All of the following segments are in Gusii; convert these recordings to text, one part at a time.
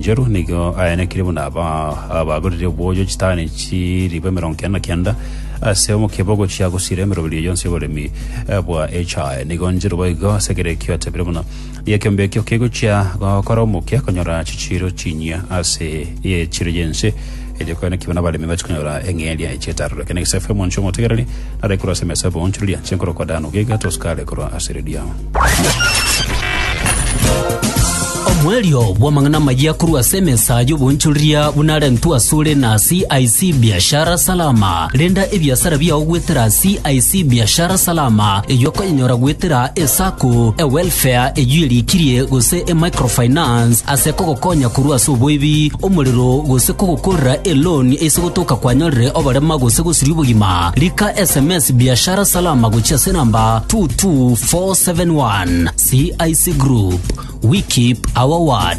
Inchorwa nigo ayanekire buna aba abagorire obwoyo chitani chiribu emerongo kenda na kenda ase omokebe ogochia gosira emeroberi eye yonsi y'oboremi eh, bwa echae. Nigo nchorwa boigo ase ekero ekio atebire buna nigo ekeombe ekio kegochia gokora omokia konyora chichiiro chinyia ase echiro y'ense Erio kare naki buna abaremi bache konyora eng'eria echi etarure, ekero negesafu omonche omotegereri nare korwa ase emesa y'oboonchoreria, chenkorokwa daanu gaiga tosuka are korwa ase riria. Omoerio bw'amang'ana amayia korwa ase emesa y'oboonchoreria buna arentwe asore na CIC Biashara Salama. Renda ebiasara biao goetera CIC Biashara Salama, eywo okonyenyora goetera eSacco, eWealth Fea eyio eriikirie gose emicrofinance ase kogokonya korwa ase oboibi, omorero, gose kogokorera eloni ase gotoka kwanyorire oborema gose gosiria obogima. Rika sms Biashara Salama gochia ase enamba 22471. CIC Group, we keep our word.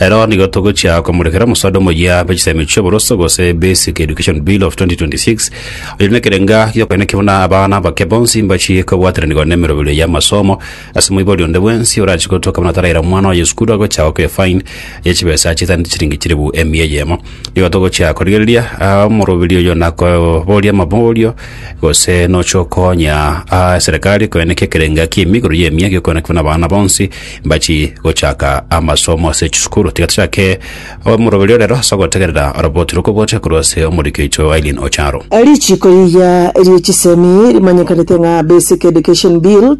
Ero nigo togochia komorekera omosaado omoyia bwe chisaimero chi'oboroso gose Basic Education Bill of 2026, oyo nekerenga gi'okoeneki buna abana abake bonsi mbachie kobwateranigwa nemerobio y'amasomo ase moibori onde bwensi orachie gotoka buna taraira omwana oye esukuru agochia goaka efine ye chibesa chitaneti chiringi chilifu emia eyemo. Nigo togochia korigereria ah, omorobiri oyo nakoboria amaborio gose nochia okonya ah, eserekari koeneki ekerenga ki'emigoro y'emia gi'okoeneki buna abana bonsi mbachi gochaka amasomo ase chisukuru tiga tochake omoroberi orero ase ogotegerera oroboti rokobote korwa ase omoriki oito Aileen Ocharo. Richiiko riria rie chisemi rimanyekanete ng'a Basic Education Bill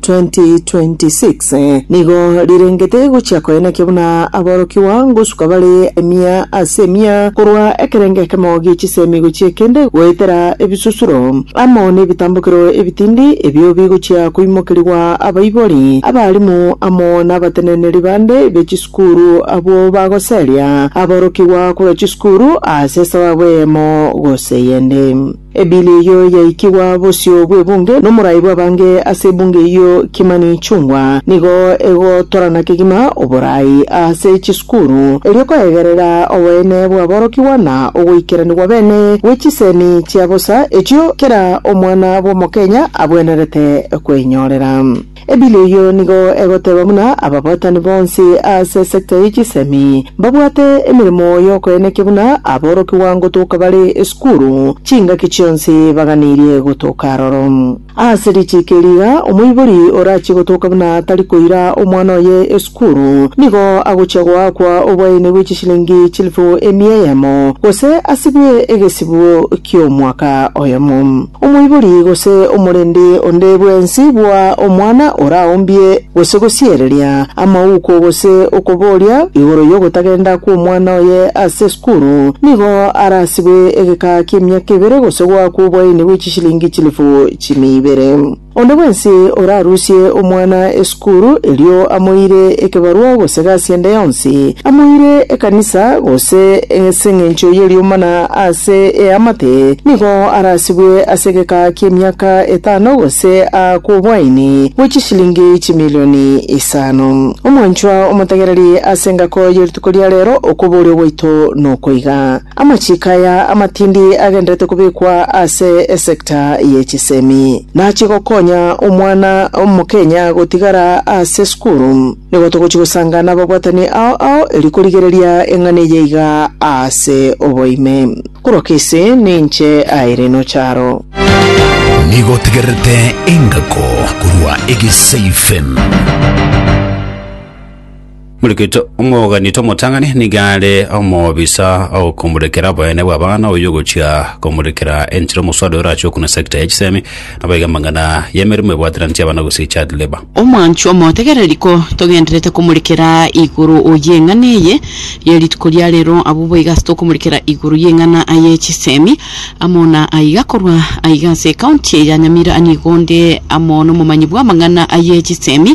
2026 nigo rirengete gochia koenekia buna aborokigwa ngosuka bare emia ase emia korwa ekerengo ekemo gie chisemi gochia ekende goetera ebisusuro amo n'ebitambokero ebitindi ebio bigochia koimokerigwa Abaibori ab'aarimu amo nabateneneri bande be chisukuru abwo bagoseria aborokigwa korwa chisukuru ase esababu eyemo gose eyende. Ebili eyio yaikigwa bosio bw'ebunge nomorai bw'abange ase ebunge eyio Kimani Ichung'wa nigo egotorana kegima oborai ase chisukuru Korwa erio koegerera oboene bw'aborokigwa na ogoikeranigwa bene gwe chisemi chia bosa echio kera omwana bw'omokenya abwenerete kweinyorera. Ebili eyio nigo egoteba buna ababwatani bonsi ase sector ye chisemi mbabwate emeremo y'okoenekia buna aborokigwa ngotoka bare esukuru chingaki chionsi baganirie gotoka aroro. Ase richiiko eri iga, omoibori orachie gotoka buna tari koira omwana oye esukuru, nigo agochia goakwa obwaene bwe chishilingi chilifu emia eyemo, gose asibwe egesibo ki'omwaka oyomo. Omoibori gose omorendi onde bwensi bwa omwana oraombie gose gosiereria amauko gose okoboria igoro y'ogotagenda kw'omwana oye ase esukuru, nigo arasibwe egeka ki'emiaka ebere gose goakwa obwaene bwe chilingi chilifu chimia ibere. Onde bwensi orarusie omwana esukuru, erio amoire ekebarwa gose egasi ende yonsi, amoire ekanisa, gose as'engencho y'eriomba na ase eamate, nigo arasibwe ase egeka ki'emiaka etano gose aakwe obwaini bwe chishilingi chimilioni isano. Omwanchwa omotegereri as'engako ye rituko ria rero, okobooria gwaito nokoiga. Amachiiko aya amatindi agenderete kobekwa ase esecta ye chisemi, nachie gokonya omwana omokenya gotigara ase sukuru. Nigo togochia gosanga nababwatani ao ao erio korigereria eng'ana eye iga ase oboime. Korwa kesi, ninche Irene Ocharo. Nigo otegererete engako korwa Egesaifem. Mulekito omogani tomotang'ani nigo are omobisa ogokomurekera oboyene bw'abana oyo ogochia komurekera enchera omoswari orache okuna sector ya chisemi nabo iga amang'ana y'emeremo ebwateranetie abana gose child labour. Omwanchwa omotegerere riko togenderete komurekera igoro y'eng'ana eye ye rituko ria rero abwo boiga ase tokomurekera igoro y'eng'ana ye chisemi amo na aiga korwa aiga ase ecounty ya Nyamira nigo onde amo nomomanyi bw'amang'ana ye chisemi